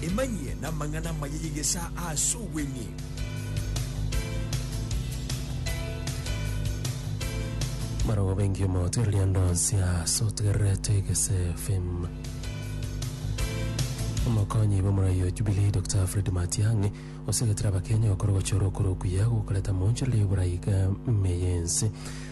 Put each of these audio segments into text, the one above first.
Emanyie namang'ana amaya y'egesaa ase obweng'e. Marogo bengi omogoterwa riando nse ase otegererete gese fame omokonyi bw'omorai o Jubilee Dr Fred Matiang'i osegetire abakenya gokora ogochora okoro okuya gokoreta monchoreria y'oborai ga ime y'ense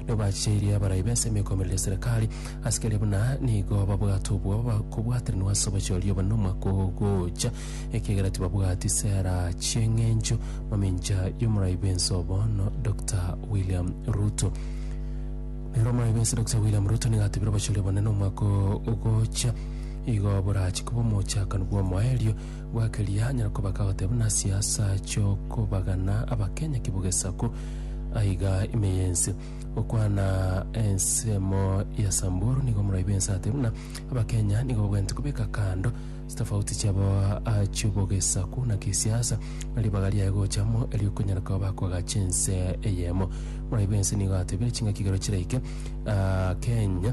nigo bacheirie abarai b'ensemo ekomoreri ya Serekari, asikari abwo na nigo babwate obwoba ba kobwateranigwa ase obochooria obo nomwaka ogocha, ekiagera tibabwati sera chi'eng'encho. Mamincha y'omorai bw'ense o bono, Doctor William Ruto. Nero omorai bw'ense Doctor William Ruto nigo atebire obochooria obonene omwaka ogocha igo borache koba omochakano bw'omoerio Bwa keria anyare koba kagote buna siasa chi'okobagana Abakenya ki bog'esaku aiga ime y'ense. Gokwana ensemo ya Samburu nigo omoraibi ense ate buna Abakenya nigo bagwenerete kobeka kando chitafauti chiabo chi'obog'esaku na kisiasa na ribaga riaye gocha amo eri'okonyara koba bakoagacha ense eyemo. Omoraibi ense nigo atebire chingaki igoro chiraike Kenya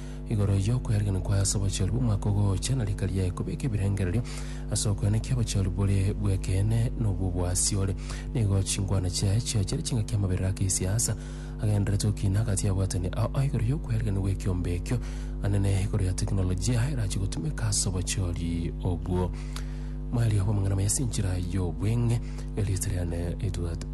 igoro y'okoyariganigwa kwaye ase obochori bw'omwaka ogoocha, na rika riaye kobeka ebirengererio ase okoenekia obochori bore bw'ekeene na obw'oboasiore. Nigo chingwana chiaye chiao chiare chingaki amaberero ake esiasa, agendererete okina agati y'abwatani ao ao igoro y'okoyariganigwa ekiombe ekio, anene igoro ya tekinolojia erachie gotumeka ase obochori obwo. Moerio bw'amang'ana maye ase enchera y'obweng'e, Elias Riane Edward.